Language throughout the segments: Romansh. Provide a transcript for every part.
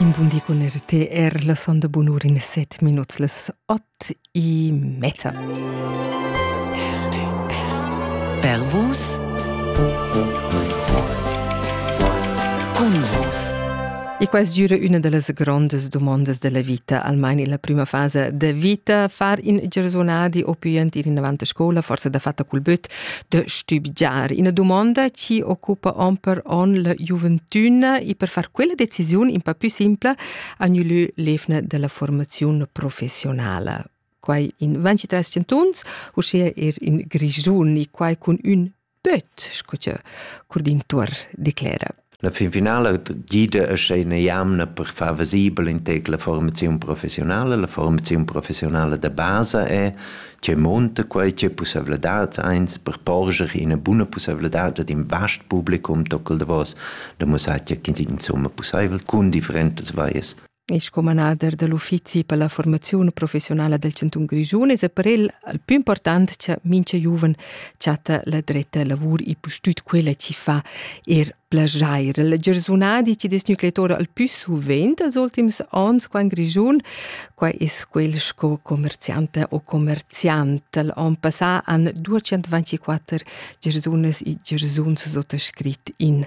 In bun di cun RT er la sonda bunur in set minuts las ot e mezza. Pervus Cun vos E quais gira üna da las grondas domandas della vita, almain illa prima fasa da vita, far in giarsunadi o pü ant ir inavant a scoula, forsa da fatta cul böt, de stübgiar ina dumonda chi occupa on per on la giuventüna e per far quella decisiun un pa più simpla agnulü l'evna della formazione professionale quai in 23 chantuns uschia er in Grischun e quai cun ün böt sco che Curdin Tuor declera. La finfinala gida uschè ina jamna per far visibel in tec la formaziun professionala. La formaziun professionala da basa è tge monta quai, tge pussavladads eins per porscher ina buna pussavladad ad in vast publicum tocal davos da mussar tge che insumma pussaivel cun differentas vaias. e sco manader da l'uffizi per la formaziun professionala del Cantun Grischun es per el al più important cha mincha giuven chatta la dretta lavur e pustüt quella chi fa er plajair. Il giarsunadi chi es gnü clettor al più suvent als ultims ons qua in Grischun, qua es quel sco commerziante o commerziant. Al on passà han 224 gersunas e gersuns suttascrit in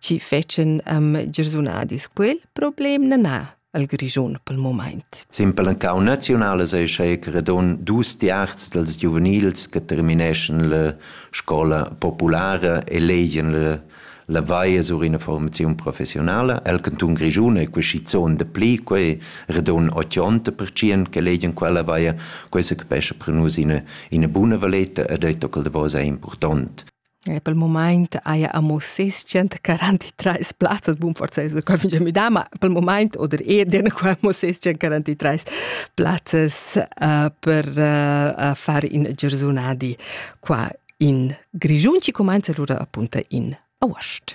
chi fetschen am girsunadis quel problem na na al Grischun pel moment. Simpel en cau naziunal es ei credon dus tiarzs dels giuvenils che termineschen la scola populara e legien la la vaia sur ina formazione professionale. El canton Grischun è quesizon de pli, quei redon 80% che legien quella vaia, quei se capesce per nus ina, ina buna valeta ed ei tocal de vosa è important. E pel mumaint haja amo ses quarantetrais plazzas, bun forsa es quai fingià müdà, ma pel mumaint oder eir dena qua amo ses quarantetrais plazzas uh, per uh, far in giarsunadi qua in Grischun, chi cumanza lura appunta in aost.